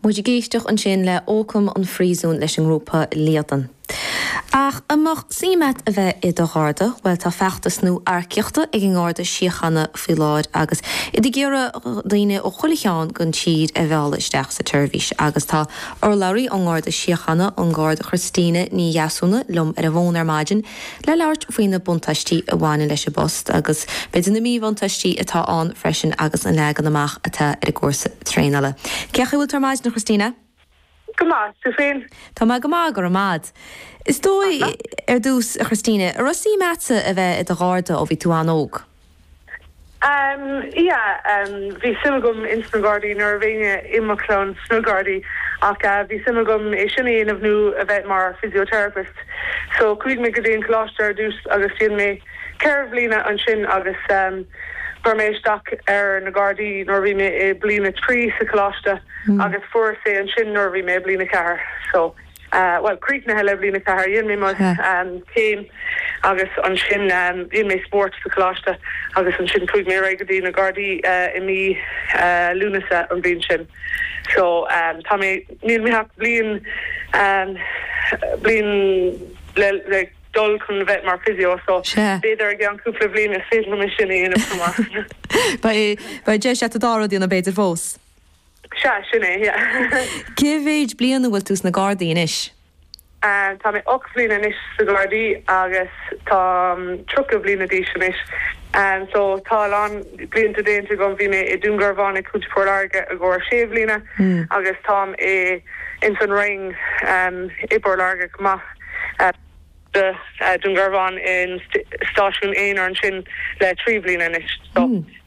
Muid ag éisteacht ansin le Ócam an Phríosúin leis an ngrúpa Líadan. Ach an mbeadh suim agat a bheith i do Gharda? Bhuel tá feachtas nua earcaíochta ag an nGarda Síochána faoi láthair agus iad ag iarraidh daoine ó chuile cheard den tír a mhealladh isteach sa tseirbhís agus tá urlabhraí ón nGarda Síochána, an Garda Christina Ní Dheasúna, liom ar an bhfón ar maidin. le labhairt faoi na buntáistí a bhaineann leis an bpost agus b'fhéidir na míbhuntáistí atá ann freisin agus an leagan amach atá ar an gcúrsa traenála. Cén chaoi a bhfuil tú ar maidin, a Christina? Go maith, tú féin? Tá mé go maith, go raibh maith 'ad. Is dóigh, ar dtús, a Christina, an raibh suim agatsa a bheith i do Gharda ó bhí tú an-óg? Yeah bhí suim agam ins na Gardaí níl éinne i mo chlann sna Gardaí ach bhí suim agam é sin a dhéanamh nó a bheith mar physiotherapist so chuaigh mé go dtí an coláiste ar dtús agus dhéan mé ceithre bhliana ansin agus chuir mé isteach ar na Gardaí nuair a bhí mé i bliain a trí sa choláiste agus fuaireas é ansin nuair a bhí mé i bliain a ceathair so. bhuel, críochnaithe le bliain a ceathair. Dhéan mé mo chéim agus ansin dhéan mé spórt sa choláiste agus ansin chuaigh mé ar aghaidh go dtí na Gardaí i mí Lúnasa an bhliain sin. So, tá mé, níl mé ach bliain, bliain le, le dul chun bheith mar physio so b'fhéidir i gceann cúpla bhliain is féidir liom é sin a dhéanamh chomh maith. Beidh, beidh deis agat an dá rud a dhéanamh b'fhéidir fós. Sea, sin é, yeah. Cé mhéid bliain a bhfuil tú sna Gardaí anois? Tá mé ocht bliana anois sa Gardaí agus táim tríocha bliana d'aois anois. So tá a lán blianta déanta agam. Bhí mé i Dún Garbhán i gContae Phort Láirge i gcomhair sé bhliana agus táim i ins an Rinn i bPort Láirge chomh maith. Sa Dún Garbhán i stáisiún aonair ansin le trí bhliana anois. So.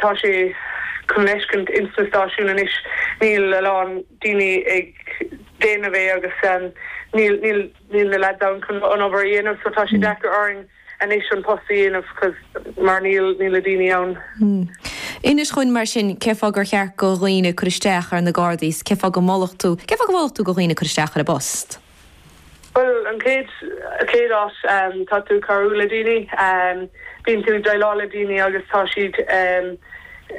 Tá sé chun fheiscint ins na stáisiúin anois. Níl a lán daoine ag déanamh é agus níl na lads ann chun an obair a dhéanamh so tá sé deacair orainn anois an post a dhéanamh mar níl na daoine ann. Inis dhúinn mar sin cé fáth gur cheart go dhaoine cur isteach ar na Gardaí 's cé fáth go molfadh tú go dhaoine cur isteach ar an bpost? Bhuel, an chéad chéad áit, tá tú ag cabhrú le daoine. Bíonn tú ag déileáil le daoine agus tá siad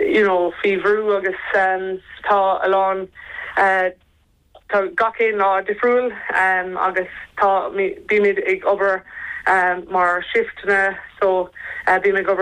you know faoi bhrú agus tá a lán tá gach aon lá difriúil agus tá bímid ag obair mar shifteanna so bím ag obair